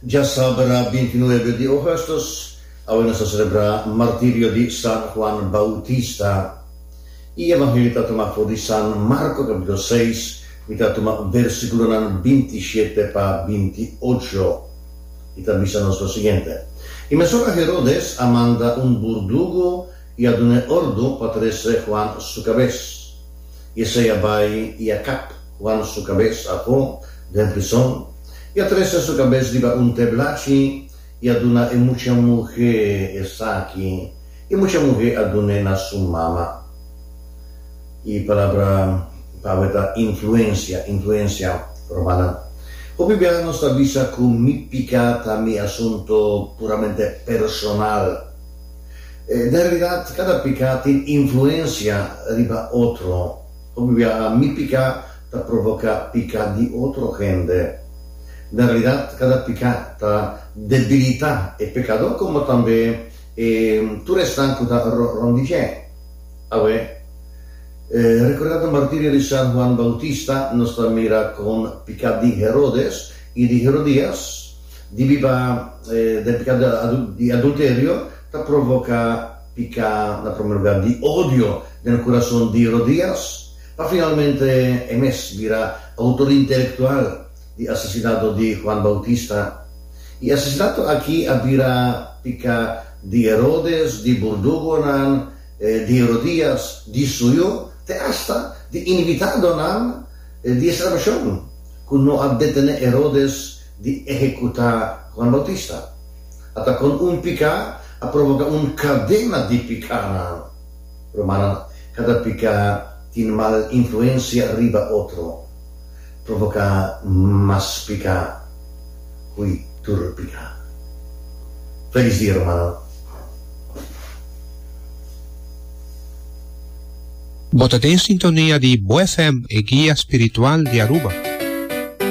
Dja sabra bintinuebe di Augustus, awe nos ta selebrá martirio di San Juan Bautista. I Evangelio ta tuma for di San Marko kapitulo seis, mi ta tuma bersikulonan binti shete pa binti ocho. I ta bisa nos lo siguiente, I mesun a Herodes a manda un burdugu i a dun'é ordu pa trese Juan su kabes, i esei a bai i a kap. Wan su kabes a po den prison, i a trese su kabes riba un teblachi, i a duna e mucha muhé esaki, i mucha muhé a dun'é na su mama. E palabra pa awe ta influensia, influensia romana. Hopi biaha nos ta bisa ku mi piká ta mi asuntu puramente personal. Den realidat, kada piká tin influensia riba otro. Hopi bia mi piká ta provoká piká di otro hende. Na realidat kada piká ta debilitá e pekadó komo tambe e tur esnan ku ta rònt di dje. Awe, rekordá ta martirio di San Juan Bautista nos ta mira kon piká di Herodes i di Herodías di biba den piká di adulterio ta provoká pica na prome lugar di odio den e curason di Rodrias, pa finalmente e mes bira autor intelectual di asesinato di Juan Bautista. Y e asesinato aki a bira pica di Herodes, di burdugonan, di Herodias, di suyo, te hasta di invitadonan di e celebracion, cu no a detene Herodes di ehecuta Juan Bautista. Ata kon un piká a provoká un kadena di pikánan. Rumannan, kada piká tin mal influensia riba otro, provoká mas piká hui tur piká. Felis dia rumannan. Bo ta den sintonia di Bo FM, e guia spiritual di Aruba.